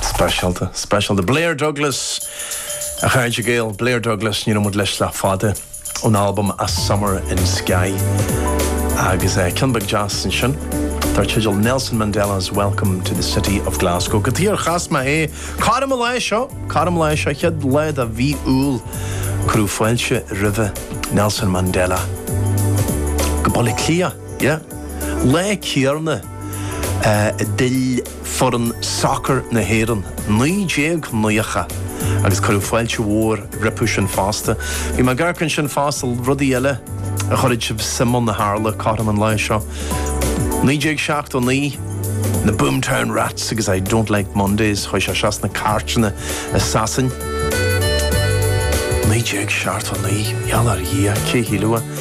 Speisialta, speisialta. Blair Douglas, a chairde Gael. Blair Douglas, níor éist muid leis le fada ón albam A Summer in Skye. Agus eh, ceann beag deas ansin, dar teideal Nelson Mandela's Welcome to the City of Glasgow. Cad chuige ar chas mé é, cothrom an lae seo, cothrom an lae seo, chéad lá de mhí Iúil, cuireadh fáilte roimhe, Nelson Mandela. Go Baile Átha Cliath, yeah. Lá céarna. D'fhill foireann sacar na hÉireann naoi déag naocha agus cuireadh fáilte mhór rompu sin fosta. Bhí mé ag amharc ansin fosta, rudaí eile a chuirfidh sibh suim ann a tharla cothrom an lae seo. Naoi déag seachtó naoi, na Boomtown Rats agus I Don't Like Mondays, chuaigh sé suas na cairteanna i Sasain. Naoi déag seachtó naoi, a gheall ar Dhia, cé shílfeadh?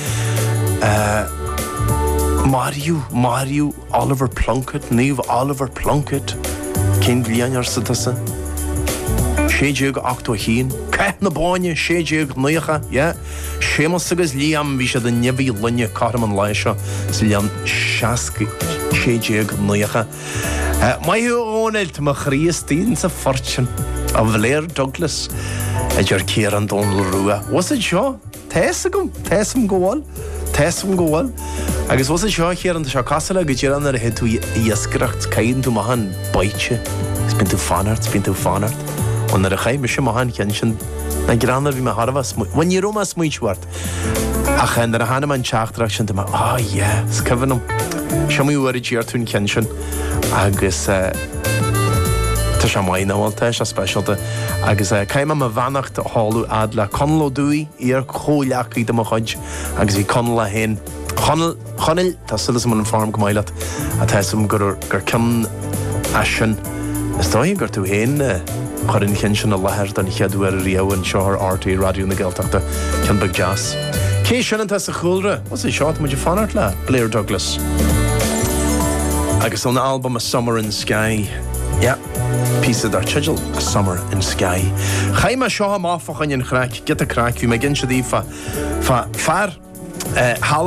Maraíodh, maraíodh Oliver Plunkett, Naomh Oliver Plunkett. Cén bhliain arsa tusa? 1681. Cath na Bóinne, 1690. Yeah. Séamus agus Liam, bhí siad i ndeabhaidh lainne cothrom an lae seo sa bhliain 60, 1690. Maith thú a Dhónaill, tá mo chroí istigh insa phort sin. An Blair Douglas, a deir Ciarán Dónaill Rua. Bhfuil fhios agat seo? Tá fhios agam. Tá fhios agam go bhfuil. Tá fhios agam go bhfuil. Agus bhfuil fhios agat seo, a Chiaráin, tá sé cosúil le go díreach nuair a théid tú ag iascaireacht, caitheann tú amach an baoite is bíonn tú ag fanacht, bíonn tú ag fanacht. Bhuel, nuair a chaith mise amach an ceann sin, a Chiaráin, bhí mé thar a bheith smaoi, bhuel, ní raibh mé smaointiú ort ach eh nuair a tháinig an teachtaireacht sin, tá mé, ah yeah, is cuimhin liom. Is iomaí uair a d'iarr tú an ceann sin. agus tá sé maith nach bhfuil, tá sé speisialta. Agus caithfidh mé mo bheannacht a sheoladh a fhad le Conall Ó Dufaigh, iar-chomhghleacaí de mo chuid agus bhí Conall é féin. Chonall, Chonaill, tá súil agam go bhfuil an form go maith leat. Tá fhios agam gur, gur cionn as sin, is dóigh gur tú féin a chuir an cionn sin i láthair don chéad uair riamh anseo ar RTÉ Raidió na Gaeltachta, cionn beag deas. Cé sin atá sa chúlra? As é seo atá muid ag fanacht le Blair Douglas agus ón albam A Summer in Skye. Yeah. Píosa dar teideal A Summer in Skye. Chaith mé seo amach fá choinne an chraic, giota craic, bhí mé ag inse daoibh fá fear eh, thall in